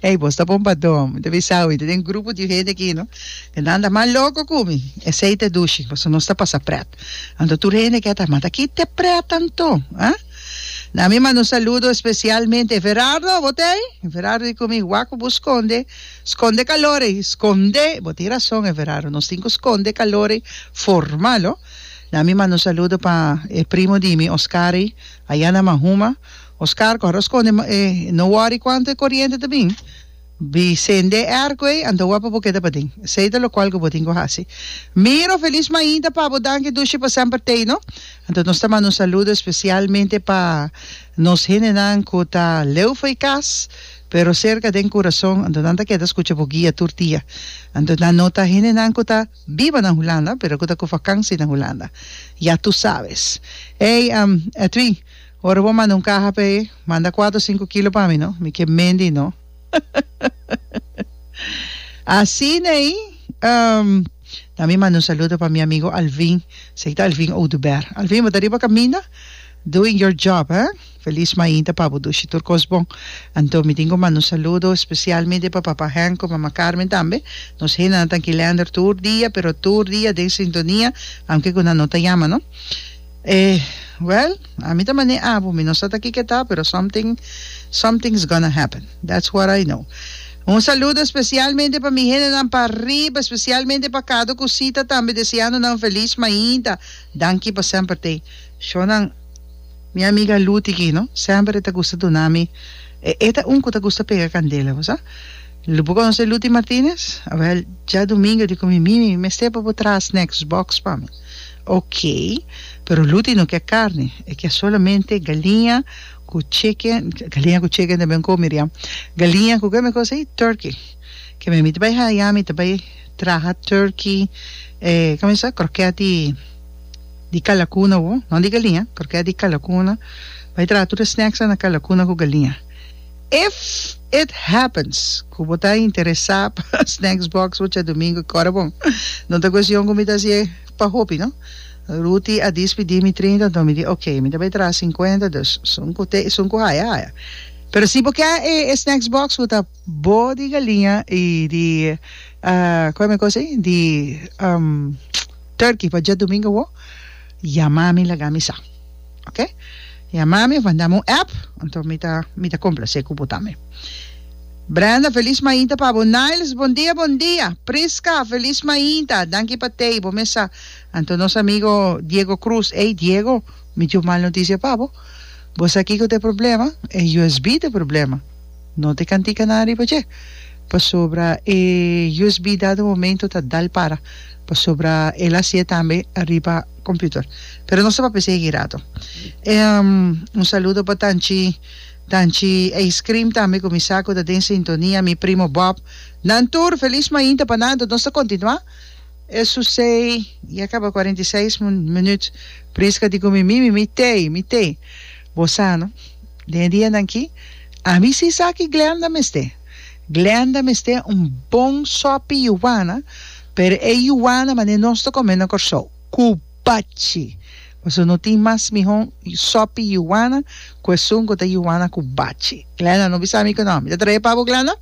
Ey, vos ta bon pa dom. Te bisa hoy, te den grupo di gente aquí, ¿no? Que dan da más loco kumi. Esey te dushi, paso nos ta pasa pret. Anto tur gente que ta, mata ki te pret anto, ha? Na mi mando saludo especialmente. Ferardo, botey? Ferardo di kumi, waku bu sconde, sconde calore, sconde, botin razón, e Ferardo, nos tin ku sconde calore formal, oh. Na mi mando saludo pa e primo di mi, Oscari, allá na Mahuma, Oscar cu a rosconde ma e no worry cuanto e coriente ta bin, bi cende e arco ey anto bo a pa bo keda paden. Esey ta locual cu bo tin cu haci. Miro, Feliz Mainta pa bo danki dushi pa semper tey no. Anto nos ta manda un saludo especialmente pa nos hendenan cu ta leufa y cas pero cerca den Curaçao anto nan ta keda scucha bo guia tur dia. Anto nan no ta hendenan cu ta biba na Hulanda pero cu ta cu vakansi na Hulanda. Ya tu sabes. Ey Edwin. Ora bo manda un kaha p'e, manda kuater o sinku kilo pa mi no, mi ke mendi no. Asin'ei, um, na mi manda un saludo pa mi amigo Alvin, esei ta Alvin Oduber. Alvin, bo ta riba kaminda? Doing your job, hè? Feliz mainta pa bo dushi tur kos bon. Anto mi tin ku manda un saludo spesialmente pa Papa Henk ku Mama Carmen tambe. Nos hendanan ta Kilander tur dia, pero tur dia den sintonia, aunke ku nan no ta yama no. Eh, well, ami ta mané abu, mi no sa ta ki ke ta, pero something, something's gonna happen, that's what I know. Un saludo especialmente pa mi hendenan pa riba, especialmente pa Cado cu Sita tambe, deseando nan feliz mainta. Danki pa semper tey shonan. Mi amiga Luti ki no, semper e ta gusta duna mi, e e ta un cu ta gusta pega candela, bo sa. Lu bo conoce Luti Martinez? Well, dja domingo di cu mi, Mimi, mester pa bo traha snacks box pa mi. Ok, pero Luti no ke carne, e ke solamente galiña cu chicken, galiña cu chicken tambe un co Miriam, galiña cu keme cosa ey? Turkey, ke me mi ta bay haya mi ta bay traha turkey, eh, como esa croquet di di calacuna, no di galiña, croquet di calacuna, bay traha tur e snacks nan na calacuna cu galiña. If it happens cu bo ta interesa pa Snacks Box oca domingo cora bon. No ta cuestion cu mi ta hasi e pa hopi no. Ruti a dispidi mi trinta anto mi di ok mi ta bay traha cincuenta dus sun cu te sun cu haya haya. Pero si bo ke e Snacks Box cu ta bo di galiña y di cu e mi cos ey di turkey pa djadomingo bo yama mi laga mi sa. Ok yama mi of mandami un app anto mi ta mi ta complase cu bo tambe Brenda feliz mainta pa bo Niles bon dia bon dia Prisca feliz mainta danki pa tei bo mes sa anto nos amigo Diego Cruz ey Diego mi tin un mal noticia pa bo bo sa kico t'e problema e usb t'e problema no te cantica nan riba dje pasobra e usb dado momento ta dal para pasobra el a haci'e tambe riba computer pero nos ta papia si e girado un saludo pa tanchi tanchi ice cream tambe cu mi sa cu ta den sintonia mi primo Bob nan tur feliz mainta pa nan nos ta continua e su sei ya caba cuarenta y seis minuut prisca di cu mi mimi mi tey mi tey bo sa no den e dianan aki ami si sa ki Glenda mester. Glenda mester un bon sopi yuana pero e yuana manera nos ta come na Corsou cubachi pasobra no tin mas mihon sopi yuana cu esun cu ta yuana cubachi Glenda no bisa mi cu no mi ta trae pa bo Glenda.